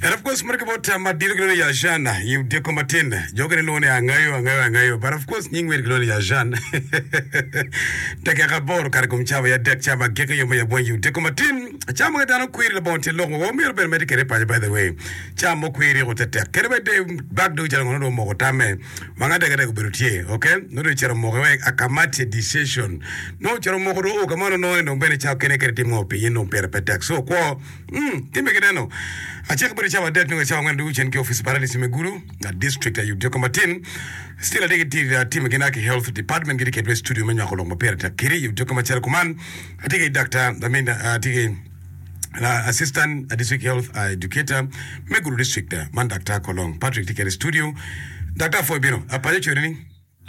And of course meno kibot tam madito kilwongo ni Yajan i odiko matin. Jo okene lwongo ni angayo angayo angayo but of course nying weri kilwongo ni Yajan. Dakika aboro kare kom cawa ya dek cawa magege yo ma yabwany i odiko matin. Cawa ma ka dano kweri labongo tye lok wa myero bene mede kede paco by the way. Cawa mo kweri ko tetek. Kene bene de bag dong calo ngono dong omoko tamme. Wanga dek dek obedo tye. Okay? No dong cero moko we akamati decision. No cero moko dong o kamano no dong bene cawa kene kede timo pinyin dong pire pe tek. So kwo Umm gin be gineno acel kabedo cawa adek nongo cawa angwen ducu cen ki office paralisi me gulu na district aye odyoko matin still ade giti time gina ki health department giti keto i studio me nywako lok ma pire tek kiri i odyoko macalo kuman ati ki Dr. I mean ati ki assistant district health educator me gulu district man Dr. Kolong Patrick ti kede i studio Dr. Afoy bino apanyo cweri ni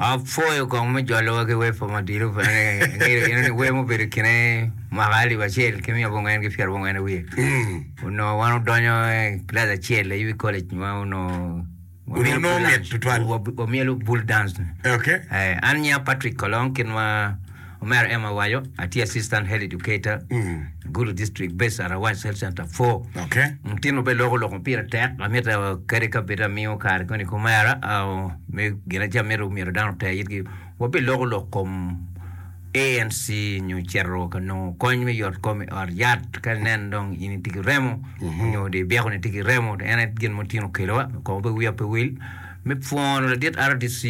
Apwoyo kong me jolowa ki wer pa Madilu pene ni angilo gin ni wer mubedo i kine mwaka alip acel ki miya abongwen ki pyera bongwen awiye onongo wan odonyo kilac acel aye wi college ma onongo Onongo nongo mit tutwal. wamyelo bull dance ni Okay. Eh, an nya Patrick Kolong kit ma Omera Emma Wayo, atye Assistant Health Educator i Gulu District Based Arawac Health Center four. Mutinwa pe loko lok ma pire tek, amitta kadi ka bed amiyo kare koni ki omera me gin acel ma myero dano oter itgi, wabi loko lok kom ANC nyo cito ka nongo kony me yot kom i ot yat ka inen dong in itye ki remo nyo dong ibyekoni itye ki remo. En aye gin ma otinwa okelowa kong pe wiya pe wil me pwono ladit RDC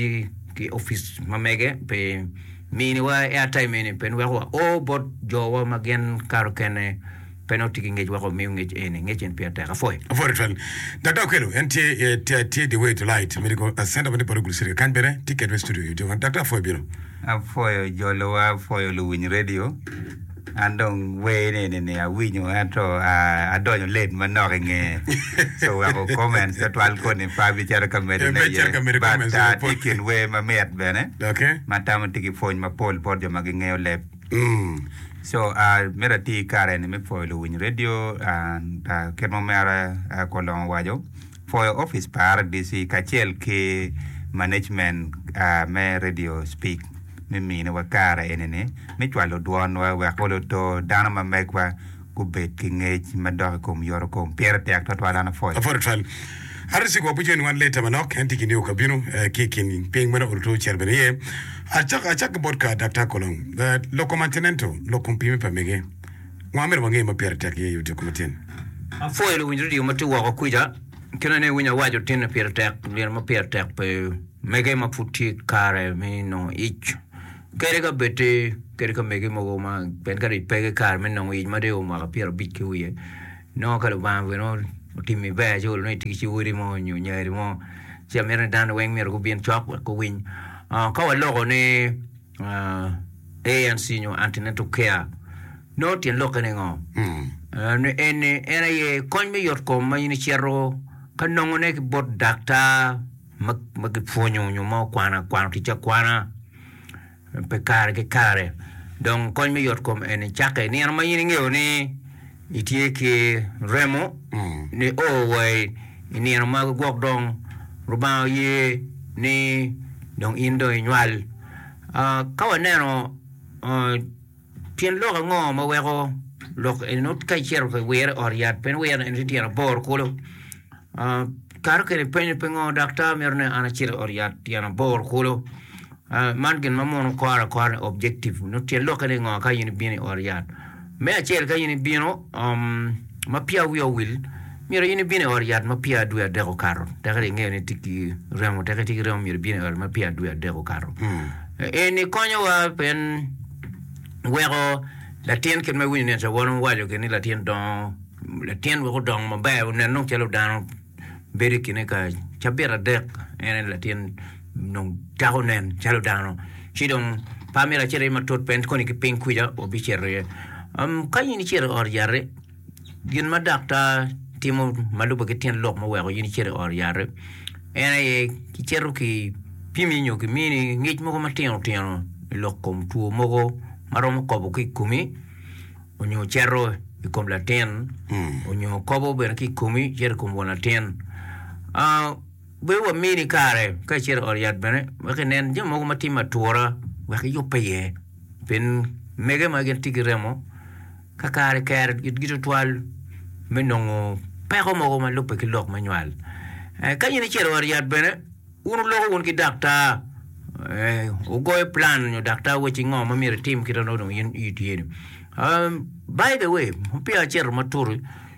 ki opic ma mege pi Miniwa airtime-eni pe niweko wa o bot jowa ma gin kato kene pe nongo tye ki ngec weko omiu ngec eni. Ngec eni peya tek. Apwoyo. Apwoyo tutwal. Dada Okello en tye ee tye the way to light medical center ma tye bot Ogulu city kany bene tye kedwa i studio i Otyeno. Daktar apwoyo bino. Apwoyo jolo wa apwoyo luwiny radio. An dong wer ni eni ni awinyo ento adonyo late manok i nge so weko comments pe twal koni pa bicito ka medo ne iye but tye i kin wer ma mit bene ma tamo tye ki pwony mapol bot jo ma gingeyo leb so myero ati ki kare eni me pwoyo luwiny radio kit ma omera Kolongo owaco pwoyo opic pa RDC kacel ki management me radio speak. me miniwa kare eni-ni me cwalo dwonwa wek luto dano ma megwa gubed ki ngec madok i kom yoto kom. Pire tek twatwal. An apwoyo. Apwodo twal. RC Kwo Bucco ni wan leta manok en tye ki niu ka bino ki i kin piny meno oluto cito bene iye. Acak, acak ki bot ka Daktar Kolong. Lok kom antinento, lok kom pime pa mege. Ngo amyero wange ma pire tek iye yoto kom atin? Apwoyo luwiny redio ma tye woko kwica. Kine ni iwinyo awaco tin ni pire tek, myero ma pire tek pe. mege ma pud tye kare me nongo ic kadi ka bed-ti kadi ka mege mogo ma pien ka dong pe kare me nongo ic ma dong eo mwaka pyera abic ki wiye nongo ka Lubanga bene otimi ber ci olo ni itye ki ci odi mo nyo nyari mo ci amito ni dano weng myero gubin cok wek guwiny ka waloko ni ANC nyo Antenatal Care nongo tyen lokke ni ngo? En aye kony me yot kom ma in icito ka nongone ki bot daktar ma gipwonyo nyo ma okwano akwano tic akwana pi kare ki kare dong kony me yot kom eni cakke i nino ma in ingeyo ni itye ki remo ni o wa i nino magi gwok dong Lubanga oye ni dong in dong inywal. Ka waneno Tyen lok ango ma weko lok eni nongo ka icito ka wire i ot yat pe wire eni tye tyen aboro kulu? Kato kwede i penyo pingo daktar mito ni an acit i ot yat tyen aboro kulu? Man gin ma mono kore akora ni objective nongo tyen lokke ni ngo ka in ibino i ot yat? Me acel ka in ibino ma peya wiya owil Myero in ibin i ot yat ma peya dwe adek okato, tekka dong ingeyo ni itye ki remo, tekka itye ki remo myero ibin i ot ma peya dwe adek okato. Eni konyowa pien weko latin kit ma iwinyo ni cawan waco gin ni latin dongo, latin wek odong maber onen dong calo dano bedo i kine ka cabit adek en aye latin dong cako nen calo dano ci dong pe amyero acit aye matut pien koni ki piny kwica wabicito iye. Ka in icito i ot yat-ti Gin ma daktar timo ma lubbe ki tyen lok ma weko in icit i ot yat en aye kicito ki pimi nyo ki mini ngec mogo matino tino i lok kom two mogo ma romo kobo ki komi onyo cito i kom latin onyo kobo bene ki komi cito i kom won latin bedo wa mini kare ka icito i ot yat bene wek inen jami mogo matye me atura wek iyube iye pien mege ma gin tye ki remo. Ka kare kero itgi tutwal me nongo peko mogo ma lubbe ki lok me nywal, ka in icito ot yat bene, wun wuloko wun ki daktar, wugoyo plan nyo daktar wacci ngo ma myero itim kit ma nongo in itye-ni. By the way, peya acito matut.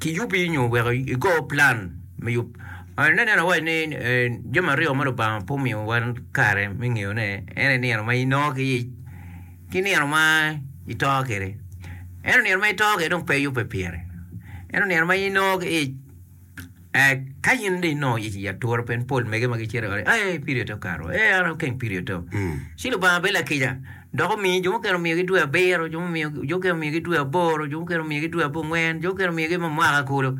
kiyubi nyo wek igo plan me yub. Nen nen awaci ni jami aryo ma Lubanga pe omiyo wan kare me ngeyone en aye nino ma inongo ki yec ki nino ma ito kede. Ento nino ma ito kede dong pe iyube pire. Ento nino ma inongo ki yec Ka in dong inongo yec i atura pe, pol mege ma gicito ioti, Ai, pirio to kato, ee, an akeng pirio to. Ci Lubanga bedo lakica, dok omiyo jo mukene omiyogi dwe abiro, jo mukene omiyogi dwe aboro, jo mukene omiyogi dwe abongwen, jo mukene omiyogi ma mwaka kulu.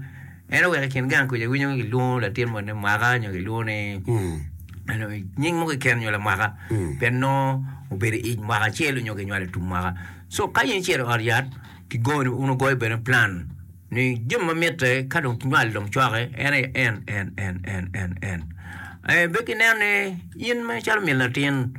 En oweko i kin gang kuca iwinyo ni kilwongo latin mo ni Mwaka nyo kilwongo ni nying mo keken nyo Lamwaka pien nongo obedo i ic mwaka acel nyo kinywalo i tum mwaka. Co ka in icito i ot yat, kigoni, wun wugoyo bene plan. Ni jami ma mitte ka dong nywal dong cwake en aye en, en, en, en, en, en. Eh, bed ki nen ni in ma calo min latin,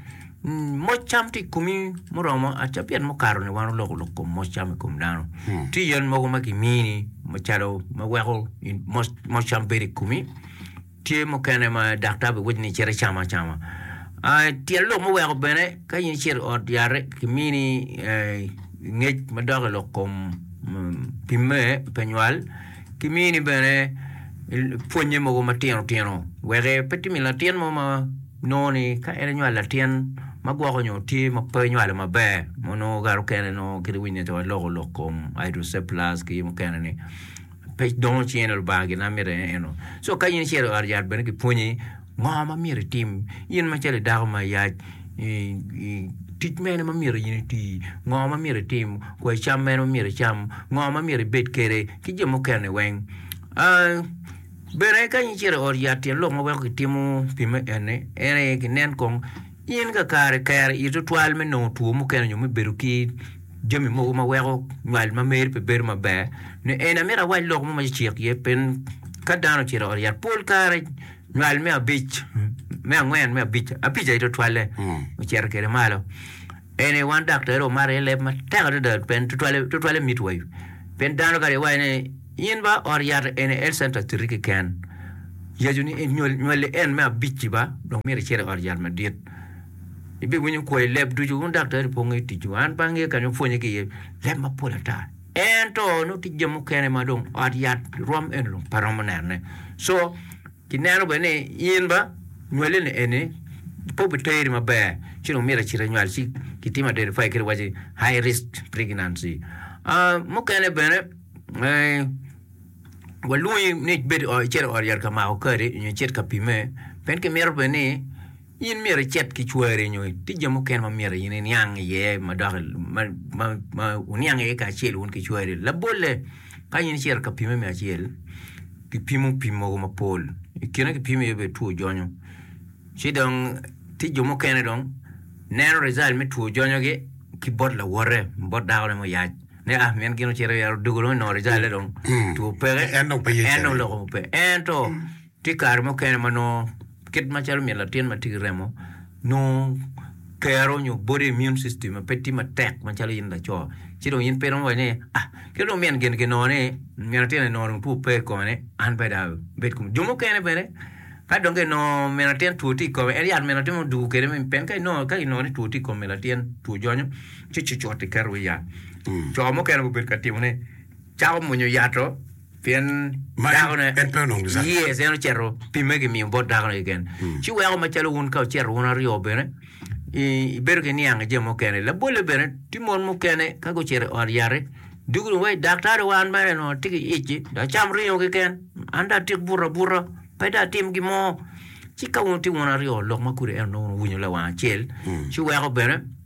mm, moc cam tye i komi muromo aca pien mukato ni wan oloko lok kom moc cam i kom dano. Tye yen mogo ma kimini macalo ma weko in moc, moc cam bedo i komi. Tye mukene ma daktar biwacci ni icit icam acama. Tyen lok muweko bene ka in icito i ot yate kimini ngec madok i lok kom pimme pe nywal, kimini bene pwonye mogo matino tino wek pe timi latin mo ma nongo ni ka en enywalo latin ma gwoko nyo tye ma pe onywalo maber ma nongo kato kene nongo kit ma iwinyo ni calo iloko lok kom hydrocephalus ki mukene ni. Pe dongo ci en Lubanga gin na mitte eno. Co ka in icito i ot yat bene kipwonyi ngo ma myero itim. In macalo idako ma iyac, tic mene ma myero in iti, ngo ma myero itim, kwai cam mene ma myero icam, ngo ma myero ibed kwede ki jo mukene weng. Bene ka in icito i ot yat tyen lok ma weko kitimo pi me eni en aye kinen kong. In kakare ikero i tutwal me nongo two mukene nyo me bedo ki jami mogo ma weko nywal ma meri pe bedo maber? Nyo eni amito awac lok mo ma cicek iye piny ka dano ocito i ot yat. Pol kare nywal me abic, me angwen, me abic, abic aye tutwalle ocito kwede malo. Eni wan daktere omato iye leb matek adada pien tutwalle, tutwalle mitwa pien dano kare iwaco ni In ba ot yat eni health center titi keken yacu ni nywali en me abic-ci ba dong myero icit i ot yat madit ibiwinyo kwo i leb ducu wun daktari po ngeyo ticwu an pe angeyo kanya wupwonye ki iye leb mapol ata ento nongo tye jami mukene ma dong ot yat rwom eno dong pe romo nene so kineno bene ni in ba nywalini eni pe obiteri maber ci dong myero icit inywal ci kitimo identify kadi waci high risk pregnancy Ah, mukene bene walwongi ni ibed icit i ot yat ka mako kadi nyo icit ka pimme pien kimito bene ni in myero icit ki cwari nyo tye jami mukene ma myero in iniang iye ma dok ma wuniang iye kacel wun ki cwari labolle ka in icito ka pimme me acel kipimo pim mogo mapol i kine kipimo iye bene two jonyo ci dong tye jo mukene dong neno rijal me two jonyogi ki bot lawote bot dakone muyac Nia, pien gin ocito i ot dugulu nongo Rijale dong two peke, En dong pe ye en dong cene. loko pe. Ento tye kare mukene ma nongo kit macalo myel latin ma tye ki remo nongo kero nyo body immune system pe tye matek macalo in laco ci dong in pe iromo waco ni ah kit dong min gin ginongo ni min atin-ni nongo dong two pe i kome-ni an pe dong abed kunu. Jo mukene bene ka dong ginongo min atin two tye i kome en yat min atin ma odwogo kwede pien ka inongo ka inongo ni two tye i kom min atin two jonyo ci cucut iketo iwi yat. Co mukene gubedo ka timo ni cako munyo yat-to pien Ma en- dakone en pe onongo Lucaden. Yes, en ocito pimme gimiyo bot dakone keken. Ci weko macalo wun ka wucito wun aryo bene i- ibedo ki niang i jami mukene. Labolle bene, tye mon mukene ka gucito i ot yat-ti dwogo dong waci daktari wa an mere onongo atye ki ic-ci dong acam ringo keken, an dong atik buto abuta pe dong atim gin mo. Ci ka wun itye wun aryo lok ma kodi ento nongo wun wuwinyo lawang acel ci weko bene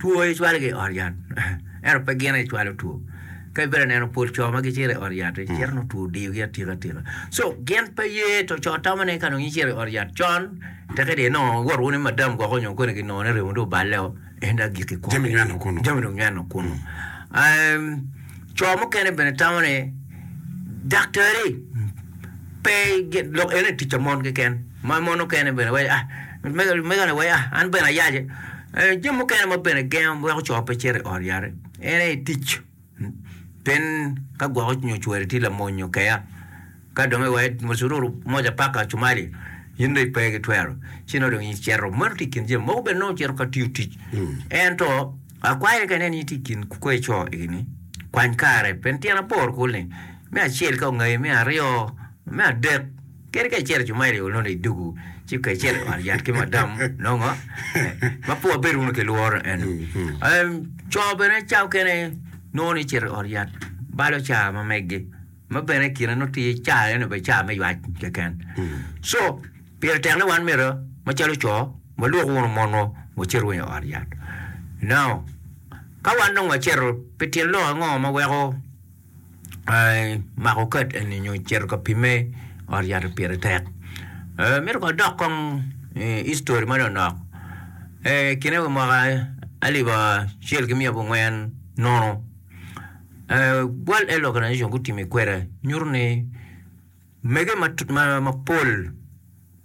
Two aye cwalogi i ot yat ento pe gin aye gicwalo two. Ka ibedo ka neno pol co ma gicito i ot yat-ti, mm. cito nongo two odiyogi atika atika. So gin pe ye to co tamo ni ka nongo icito i ot yat con, teke dong inongo iwot wunu ni madam gwoko nyo koni ginongo ni remo dong oballeo, en dong agikki kunu. Jami nyweno kunu. Jami dong nyweno kunu. Um, co mukene bene tamo ni daktari pe lok ene tic pa mon keken. Ma mon mukene bene waco, Ah, megane waco, Ah, an bene ayace. Eh, jami mukene ma bene gengo weko co pe cito i ot yare en aye i tic. Pien ka gwoko nyo cwari tye lamony nyo keya, ka dong iwaco moc iruru moc apaka cumali, in dong ipe gitwero. Ci nongo dong in icito. Meno tye i kin jami. Mogo bene nongo cito ka tiyo tic. Ento akwayone kene ni itye i kin kweyo co egini, kwany kare, pien tyen aboro kulu-ni, me acel ka ongayi, me aryo Me adek, kadi ka icito i cumairi onongo i dugu ci ka icito i ot yat ki madam nongo ma pua bedo wunu ki lworo eno. Em, Co bene ca okene nongo ni cito i ot yat balo ca ma meggi ma bene i kine nongo tye ca eno obedo ca me ywac keken. Co pire tek ni wan myero macalo co walwok wunu monwa wacit wunu i ot yat. Now, ka wan dong wacito pi tyen lok ango ma weko mako kad eni nyo cito ka pimme i ot yat pire tek mito kong adok kong history ma lonok kine wa mwaka alip acel ki miya abong gin nono world health organization gutimo ikwede nyuto ni Omege mapol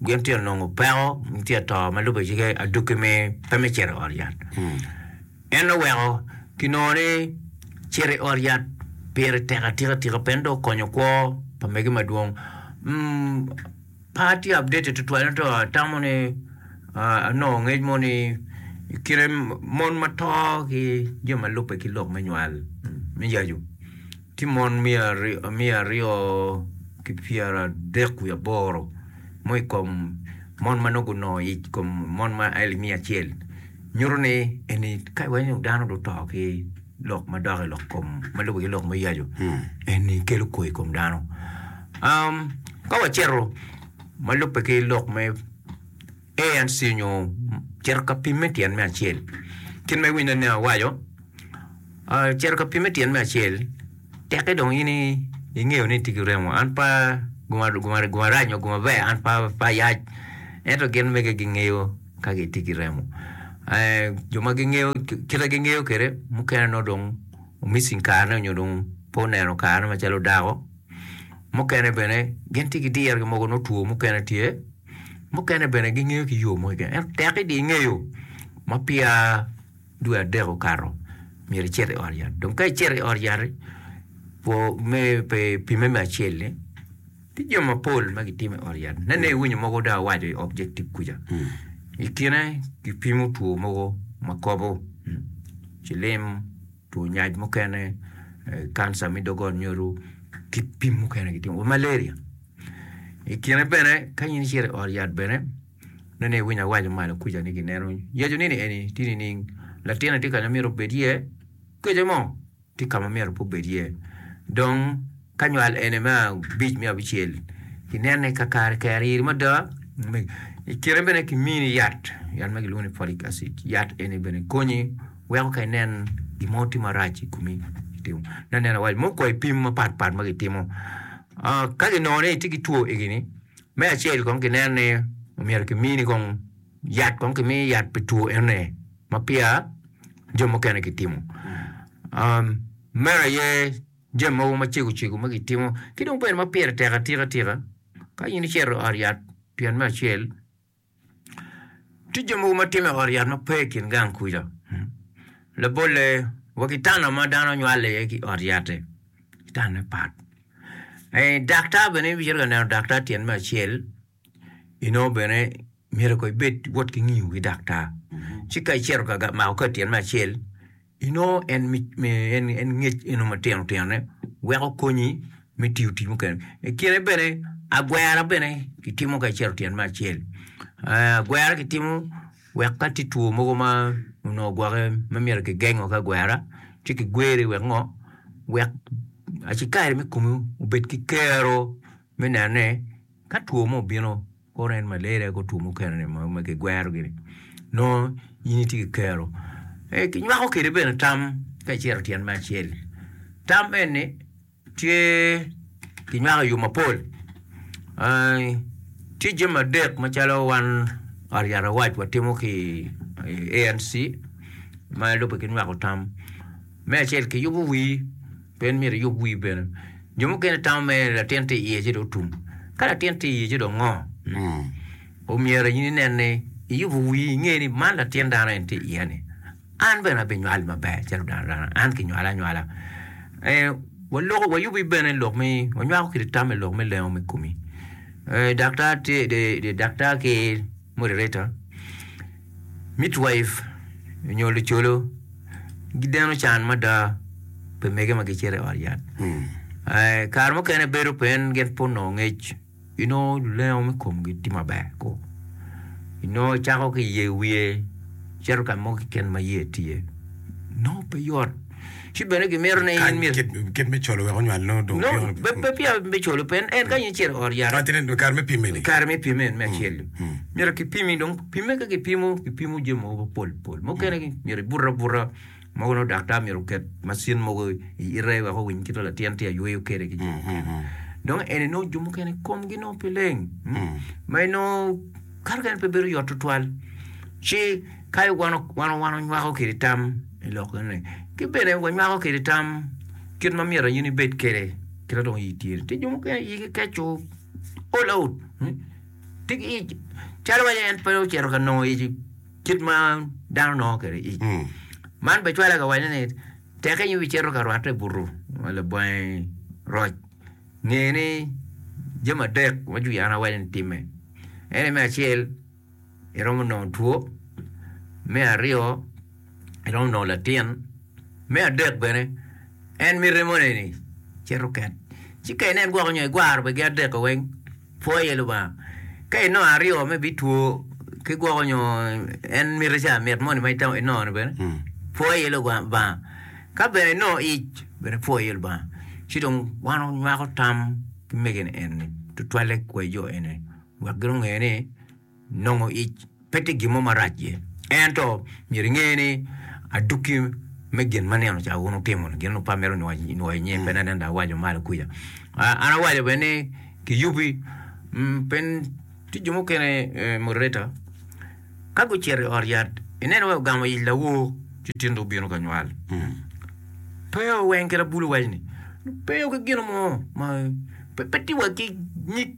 gin tye ka nongo peko, gin tye ka to ma lubbe ci ki adwogi me pe me cito i ot yat. En oweko kinongo ni cito i ot yat pire tek atika tika pien dong okonyo kwo pa mege madwong. Pe atye updated tutwal ento atamo ni anongo ngec mo ni i kine mon ma to ki jo ma lubbe ki lok me nywal me yacu Tye mon miya aryo ki pyera adek wiye aboro mo i kom mon ma nongo gunongo yec i kom mon ma aye miya acel nyuto ni eni ka iwaco ni dano dong oto ki lok ma dok i lok kom ma lubbe ki lok me yacu eni kelo kwo i kom dano. Ka wacito ma lubbe ki lok me ANC onyo cito ka pimme tyen me acel. Kit ma iwinyo ni awaco, cito ka pimme tyen me acel teke dong in ingeyo ni itye ki remo. An pa guma rac nyo guma ber an pe ayac. Ento gin mege gingeyo ka gitye ki remo. Jo ma gingeyo kit ma gingeyo kwede mukene nongo dong missing kare ne onyo dong pe oneno kare ne macalo dako. Mukene bene gin tye ki dirgi mogo nongo two mukene tye. Mukene bene gingeyo ki yo mo keken ento tek idi ingeyo ma peya dwe adek okato myero icit i ot yat dong ka icito i ot yat-ti kwo me pe pimme me acel-li tye jo mapol ma gitimo i ot yat nene iwinyo mogo dong awaco i objective kuca i kine kipimo two mogo ma kobo cilim, two nyac mukene, kanca me dogol nyodo ki pim mukene gitimo malaria. I kine bene kany in icito i ot yat bene nongo iwinyo awaco malo kuca ni gineno yec ni eni tye nining latinoni tye ka ma myero obed iye kica mo tye ka ma myero pe obed iye dong ka nywal ene me abic me abicel inene kakare kare iri mada i kine bene kimini yat yat ma kilwongo ni folic acid yat eni bene konyi. Weko ka inen gin mo tye marac i komi, itimo nongo nen awal mo kwai pim mapat pat ma gitimo. Ka ginongo ni itye ki two egi ni, me acel kong ginen ni omyero kimini kong yat kong kimi yat pi two enoni ma peya jo mukene gitimo. Meno aye jami mogo macego cego ma gitimo. Ki dong bene ma pire tek atika tika ka in icito i ot yat pien me acel Tye jo mogo ma timme i ot yat ma pe i kin gang kuca. Labolle wa ki tanna ma dano nywale iye ki ot yatte, tanne pat. Eh, daktar bene in ibicito ka neno daktar tyen me acel, inongo bene myero ko ibed wot ki ngiyo ki daktar. Ci ka icito ka ga- mako kati tyen me acel, Inongo en ngec eno matino tinone weko konyi me tiyo tic mukene. I kine bene agwera bene kitimo kacito tyen me acel. Agwera kitimo wek ka tye two mogo ma onongo gwoke ma myero kigengo ki agwera ci kigweri wek ngo, wek acikari me komi obed ki kero me neno ni Ka two mo obino, kore en malaria ki two mukene-ni ma ma kigwerogi-ni, nongo in itye ki kero. Ee, kinywako kwede bene tam ka icito tyen me acel. Tam eni tye kinywako i yo mapol. Aa, tye jami adek macalo wan Ot Yat Awac watimo ki i ANC ma lubbe ki nywako tam. Me acel kiyubo wii. Pe imyero iyub wii bene. Jo mukene tamo mere ni latin tye iye ci dong otum. Ka latin tye iye ci dong ngo? Omyero in inen ni iyubo wii inge ni man latin dano en tye iye ni. An bene abinywal maber calo dano dano, an kinywala anywala. Waloko, wayubi bene lok me, wanywako kit tam me lok me lengo me komi. Daktar tye, daktar ki moderator. Midwife nyo lucolo gideno can mada pi mege ma gicito i ot yat. Eh, kare mukene bedo pen gin pud nongo ngec. Inongo lulengo me komgi tye maber ko. Inongo cako ki iye wiye cito ka mo keken ma iye tye. Nongo pe yot. ci bene gimito ni in myero. Kany kit me colo wek onywal nongo dong Nongo otyeko pe pe peya me colo pe en, en kany icito i ot yat. Kany tye kare me pimme ni. Kare me pimme en me acel dong. Myero kipimi dong, pimme ka kipimo, kipimo jami mogo mapol pol. Mukene myero ibute abuta, mogo nongo daktar myero oket macin mogo i ite wek owiny kit ma latin tye ka yweyo kwede ki jo mukene. Dong eni nongo jo mukene komgi nongo pe leng, ma inongo kato kene pe bedo yot tutwal. Ci kayo wan, wan, wan onywako kwede tam. I lokone, ki bene wanywako kwede tam kit ma myero in ibed kwede kit ma dong iyi tye-ni. Tye jo mukene ma iyigi keco all out, tye ki ic calo wai en pe ocito ka nongo ic kit ma dano nongo kwede ic. Man bene cwale ka waco ni teke in wubicito ka rwatte i butu ma labangi roc, nge ni jami adek ma Juyana waco ni timme, en aye me acel. iromo nongo two, me aryo iromo nongo latin, me adek bene en mite moni ni cit oket ci ka inen gwok nyo igwaro bene gi adek-ki weng pwo iye Lubanga ka inongo aryo ma ibitwo ki gwoko nyo en mite ca mit moni ma itamo inongo-ni bene pwo iye Lubanga ka bene inongo ic bene pwo iye Lubanga ci dong wan wanywako tam ki mege-ni eni tutwalle ki kwayi jo eni. wek gungeyo ni nongo ic pe tye gin mo marac iye. Ento myero inge ni adwoki me gin ma nino ca wun wutimo-ni, gin wun wupamere onwoyo i nyim, pe anene dok awaco malo kuca. Ah, an awaco bene ni kiyubi, mm, pe ni tye jo mukene, eh, moderator, ka gucito i ot yat, ineno wai ogamo ic lawor ci tinde obino ka nywal. Pe oweng kit abulu waco-ni, pe oki gino mo ma pe, pe tye wa ki nyig.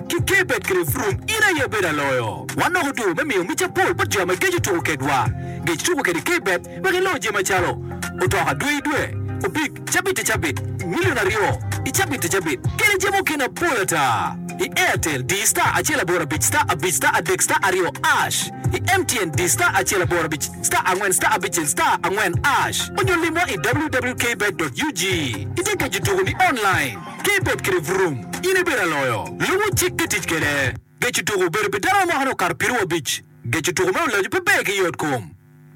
Ki ka ibed kwede purung, in aye ibedo aloyo. Wan dok otur me miyo mica pol bot jo ma gigeco tuko kedwa. Gec tuko kwede ka ibed wek iloo jami macalo, otoka dwe i dwe, opig cabit i cabit, milion aryo i cabit i cabit, kede jami okina pol ata. I Airtel, di star acel aboro abic star abic star adek star aryo ash. I MTN, di star acel aboro abic star angwen star abicel star angwen ash, onyo limwa i wwkbet.ug. Itye geco tuko-ni online. Ka ibed kede vurum, in ibedo aloyo. Lubo cik pe tic kede. Geco tuko obedo pi dano ma mwakane okato piero wiye abic. Geco tuko me olajo pe ber ki yot kom.